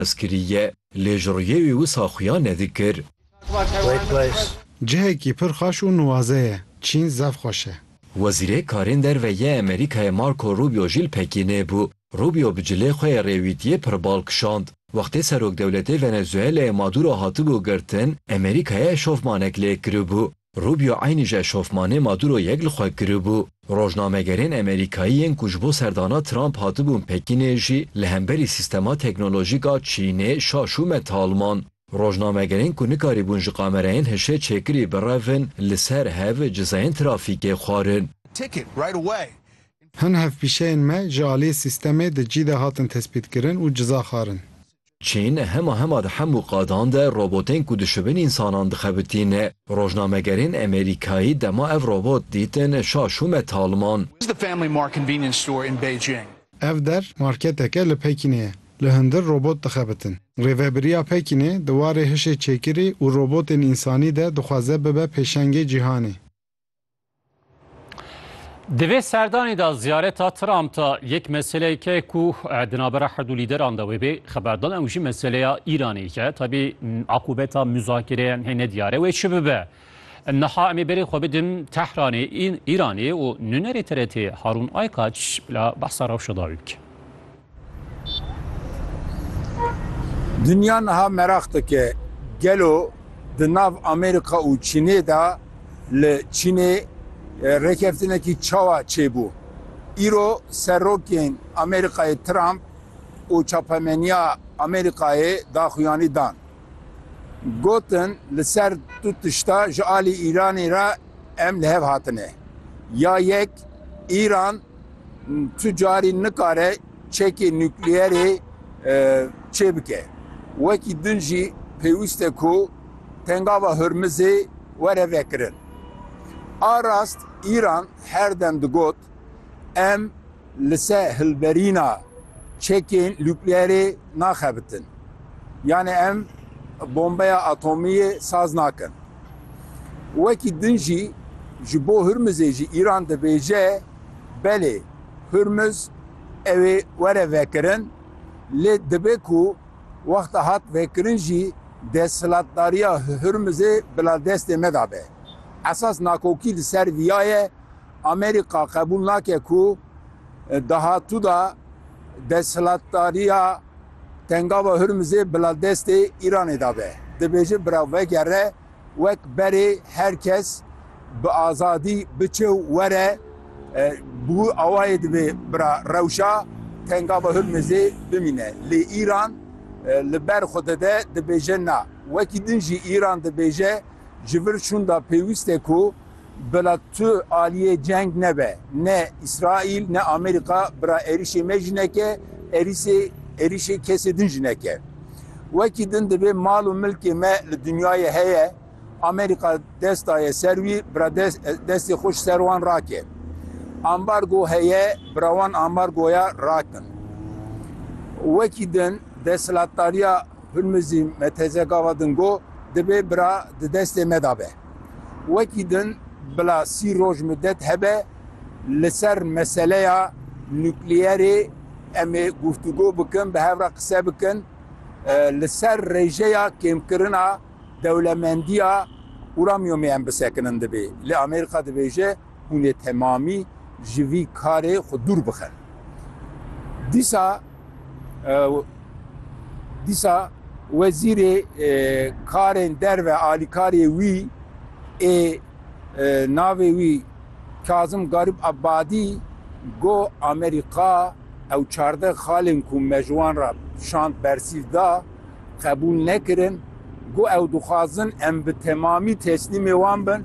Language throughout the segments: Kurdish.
Ez kiriye lê ji rûyê wî wisa xuya nedikir. Cihekî pir xweş û nuwaze ye. Çîn zef xweş e. Wezîrê Karên Derve yê Amerîkayê Marco Rubio jî li Pekînê bû. Rubio bi cilê xwe yê rêwîtiyê pir bal kişand. Wextê Serokdewletê Venezueleyê Maduro hatibû girtin, Amerîkayê eşofmanek lê kiribû. Rubio eynî ji eşofmanê Maduro yek li xwe giribû. Rojnamegerên Amerîkayî yên ku ji bo serdana Trump hatibûn Pekînê jî li hemberî sîstema teknolojîk a Çînê şaş û metal man. Rojnamegerên ku nikarîbûn ji kamerayên hişê çêkirî birevin li ser hev cizayên trafîkê xwarin. Hin hevpîşeyên me ji aliyê sîstemê di cî de hatin tespîtkirin û ciza xwarin. Çîn hema hema di hemû qadan de robotên ku dişibin însanan dixebitîn. Rojnamegerên Amerîkayî dema ev robot dîtin şa şûme taliman. Ev der marketek e li Pekînê ye. Li hundir robot dixebitin. Rêvebiriya Pekînê di warê hişê çêkirî û robotên însanî de dixwaze bibe pêşengê cîhanê. Di vê serdanê de ziyareta Trump da yek meseleyeke ku di navbera her du lîderan de wê bê xeberdan ew jî meseleya Îranê ye. Tabî akûbeta muzakirêyan hê ne diyar e wê çi bibe. Niha em ê berê xwe bidin Tehranê, Îranê û nûnerê TRT'ê Harûn Aykaç bila behsa rewşa dawî bike. Dinya niha meraq dike gelo di nav Amerîka û Çînê de li Çînê rêkeftinekî çawa çêbû. Îro serokên Amerîkayê Trump û çapemeniya Amerîkayê daxuyanî dan. Gotin li ser du tişta ji alî Îranê re em li hev hatine. Ya yek Îran Tu carî nikare çekê nukleerê çêbike. Wekî din jî pêwîst e ku Pengava Hormizê were vekirin. A rast Îran her dem digot, Em li ser hilberîna çekên nukleerê naxebitin. Yanê em bombeya atomiyê saz nakin. Wekî din jî ji bo Hormizê jî Îran dibêje, Belê, Hurmuz ew ê were vekirin, lê dibe ku wexta hat vekirin jî desthilatdariya Hurmuzê bila destê me de be. Esas nakokî li ser viya ye, Amerîka qebûl nake ku dahatû de desthilatdariya Tengava Hurmuzê bila destê Îranê de be. Dibêje bila vegere Wek berê her kes bi azadî biçe û were, bi wî awayê divê bira rewşa tenga bi Hurmizê bimîne. Lê Îran li ber xwe de de dibêje na. Wekî din jî Îran dibêje ji vir şûnda pêwîst e ku, Bila tu aliyê ceng nebe. Ne Îsraîl ne Amerîka bira êrîşê me jî neke, êrîsê êrîşê kesê din jî neke. Wekî din divê mal û milkê me li dinyayê heye, Amerîka dest daye ser wî bira des destê xwe ji ser wan rake. Ambargo heye bira wan ambargoya rakin. Wekî din desthilatdariya Hurmizî me teze gava din got, divê bira di destê me de be. Wekî din bila sî roj midet hebe li ser meseleya nukleyerê em ê guftûgo bikin, bi hev re qise bikin li ser rêjeya kêmkirina dewlemendiya uranyumê em bisekinin dibê. Lê Amerîka dibêje, Hûn ê temamî ji vî karê xwe dûr bixin. Dîsa dîsa wezîrê karên derve alîkariyê wî ê navê wî Kazim Garîb Ebadî got Amerîka ew çardeh xalên ku me ji wan re şand bersîv da, qebûl nekirin, got ew dixwazin em bi temamî teslîmê wan bin,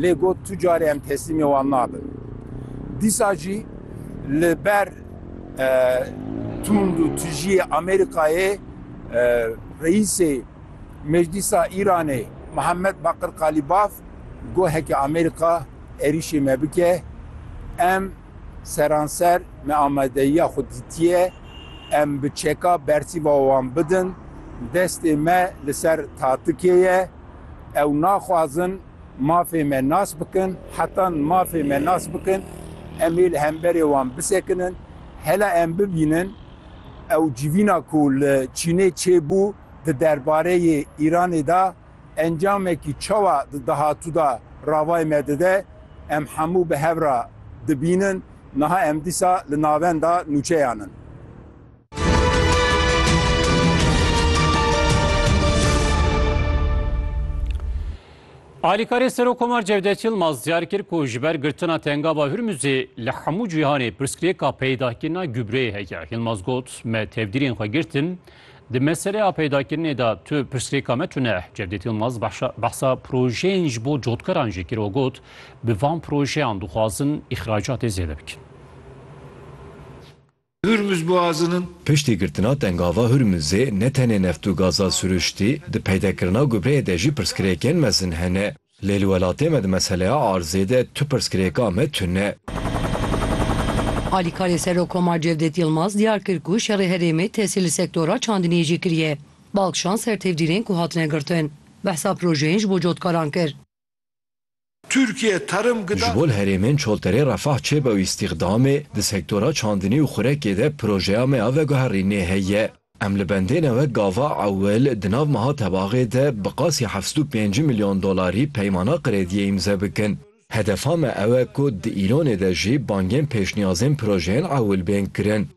lê got tu carê em teslîmê wan nabin. Dîsa jî li ber tund û tijiyê Amerîkayê Reîsê Meclîsa Îranê Mihemed Bakir Kalîbaf got heke Amerîka êrîşê me bike em Seranser me amadeyiya xwe dîtiye, em bi çeka bersîva wan bidin, destê me li ser tatikê ye, ew naxwazin mafê me nas bikin, heta mafê me nas bikin em ê li hemberê wan bisekinin, hela em bibînin ew civîna ku li Çînê çêbû di derbareyê Îranê de, Encamekî çawa di dahatû de ravayê me dide, em hemû bi hev re dibînin. Niha em dîsa li navenda nûçeyan in. Alîkarê Serokkomar Cevdet Yilmaz diyar kir ku ji ber girtina Tengava Hurmuzê li hemû cîhanê pirsgirêka peydakirina gubreyê heye. Yilmaz got, Me tevdîrên xwe girtin. Di meselê a peydakirinê de tu pirsgirêka me tune e. Cevdet Yilmaz behsa projeyên ji bo cotkaran jî kir û got, Bi van projeyan dixwazin îxracatê zêde bikin. Hurmuz Boğazı'nın. Piştî girtina Tengava Hurmuzê ne tenê neft û gaza siruştî, di peydekirina gubreyê de jî pirsgirêkên mezin hene. Lê li welatê me di meseleya arzê de tu pirsgirêka me tune ye. Alîkarê Serokkomar Cevdet Yilmaz diyar kir ku şerê herêmê tesîr li sektora çandiniyê jî kiriye. Balkişand ser tevdîrên ku hatine girtin. Behsa projeyên ji bo cotkaran kir. Tirkiye terim Ji bo gidan. li herêmên Çolterê refah çêbe û îstîxdamê, di sektora çandinî û xurekê de projeya me ya veguherînê heye. Em li bendêne wek gava ewil di nav meha tebaxê de bi qasî heft û pêncî milyon dolarî peymana krêdiyê îmze bikin. Hedefa me ew e ku di Îlonê de jî bangên pêşniyazên projeyên ewil bên kirin.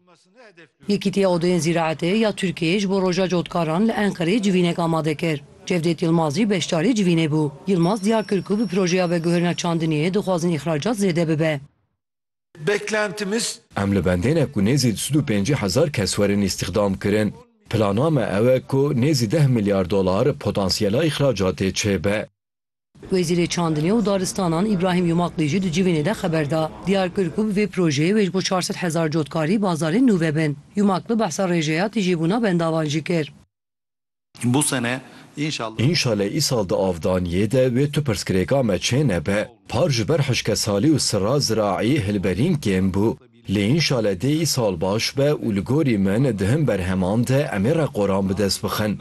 Yekîtiya Odoyên Zîraetê ya Tirkiyeyê ji bo Roja Cotkaran li Enqereyê civînek amade kir. Cevdêt Yilmaz jî beşdarê civînê bû. Yilmaz diyar kir ku bi projeya veguherina çandiniyê dixwazin îxracat zêde bibe. Beklentimiz. Em li bendêne ku nêzî du sed û pêncî hezar kes werin îstîxdamkirin. Plana me ew e ku nêzî deh milyar dolar potansiyela îxracatê çêbe. Wezîrê Çandinê û Daristanan Îbrahîm Yumakli jî di civînê de xeber da. Diyar kir ku bi vê projeyê wê ji bo çar sed hezar cotkarî bazarên nû vebin. Yumakli behsa rêjeya tijîbûna bendavan jî kir. Bu sene inşallah. Înşale îsal di avdaniyê de wê tu pirsgirêka me çê nebe. Par ji ber hişkesalî û sira ziraî hilberîn kêm bû. Lê înşale dê îsal baş be û li gorî min di hin berheman de em ê reqoran bi dest bixin.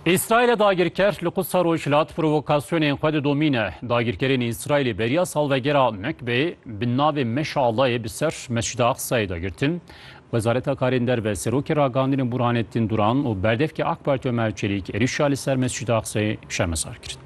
Îsraîlê dagirker li Qudsa Rojhilat provokasyonên xwe didomîne. Dagirkerên Îsraîlê beriya salvegera Mekbeyê bi navê Meşalayê bi ser Mescida Aqsayê de girtin. Wezareta Karên Derve Serokê Ragihandinê Burhanettin Duran û berdevkê AK Partî Omer Çelîk êrîşa li ser Mescida Aqsayê şermezar kirin.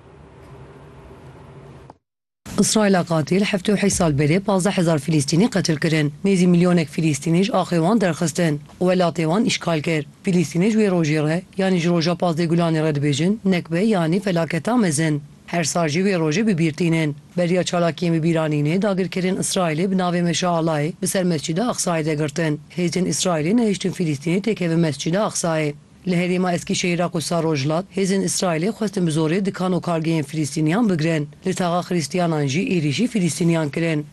Îsraîla qatî li heftê û heşt sal berê pazdeh hezar Fîlîstînî qetil kirin. Nêzî milyonek Fîlîstînî ji axê wan derxistin û welatê wan îşgal kir. Fîlîstînê ji wê rojê re yanî ji roja pazdeh gulanê re dibêjin nekbe yanî felaketa mezin. Her sal jî wê rojê bi bîr tînin. Beriya çalakiyên bi bîranînê dagirkerên Îsraîlê bi navê Meşa Alayê bi ser Mescîda Aqsayê de girtin. Hêzên Îsraîlê nehiştin Fîlîstînê têkevin Mescîda Aqsayê. Li herêma Eskîşehîr a Qûdsa Rojhilat, hêzên Îsraîlê xwestin bi zorê dikan û kargehên Filîstîniyan bigirin. Li taxa Xirîstiyanan jî êrîşî Filîstîniyan kirin.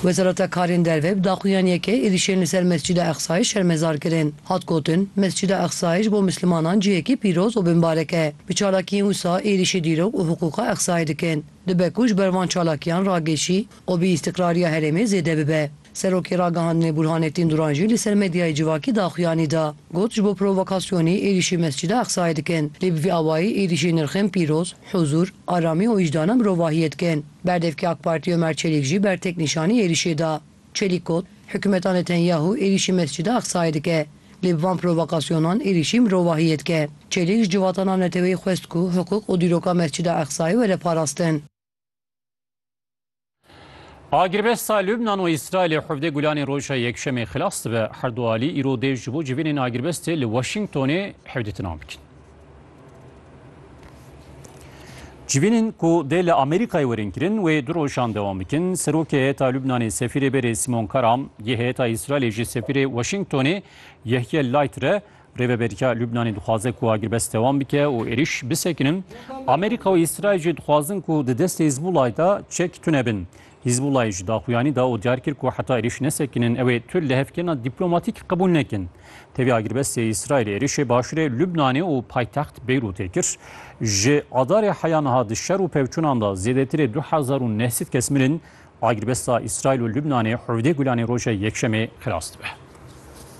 Wezareta Karên Derve bi daxuyan yeke êrîşên li ser Mescîda Eqsayê şermezar kirin. Hat gotin, Mescîda Eqsayê ji bo Mislimanan cihekî pîroz û binbarek e. Bi çalakiyên wisa êrîşê dîrok û hiqûqa Eqsayê dikin. Dibe ku ji ber van çalakiyan ragêşî û bîîstiqrariya herêmê zêde bibe. Serokê Ragihandinê Bûrhanê Tînduran jî li ser medyayê civakî daxuyanî da. Got ji bo provokasyonî êrîşî Mescida Eqsayê dikin. Lê bi vî awayî êrîşî nirxên pîroz, huzûr, aramî û wijdana mirovahiyê dikin. Berdevkê AK Partî Omer Çelîk jî bertek nîşanî êrîşê da. Çelîk got, Hikûmeta Netenyahû êrîşî Mescida Eqsayê dike. Lê bi van provokasyonan êrîşî mirovahiyê dike. Çelîk ji civatana neteweyî xwest ku hiqûq û dîroka Mescida Eqsayê were parastin. Agirbesta Lubnan û Îsraîlê hevdê Gulanê roja Yekşemê xilas dibe. Her du alî îro dê ji bo civînên agirbestê li Washingtonê hevdîtina bikin. Civînên ku dê li Amerîkayê werin kirin wê du rojan dewam bikin. Serokê heyeta Lubnanê Sefîrê Berê Simon Karam, yê heyeta Îsraîlê jî Sefîrê Washingtonê Yehye Laitre Rêveberiya Lubnanê dixwaze ku agirbest dewam bike û êriş bisekinin. Amerîka û Îsraîl jî dixwazin ku di destê Hizbulayê de çek tune bin. Hizbulayê ji daxuyanî da û diyar kir ku heta êriş nesekinin ew ê tu lihevkirina dîplomatîk qebûl nekin. Tevî agirbestê Îsraîlê êrişê başûrê Lubnanê û paytext Beyrûtê kir. Ji adarê heya niha di şer û pevçûnan de zêdetirê du hezar û neh sed kes mirin. Agirbesta Îsraîl û Lubnanê hevdeh Gulanê roja Yekşemê xilas dibe.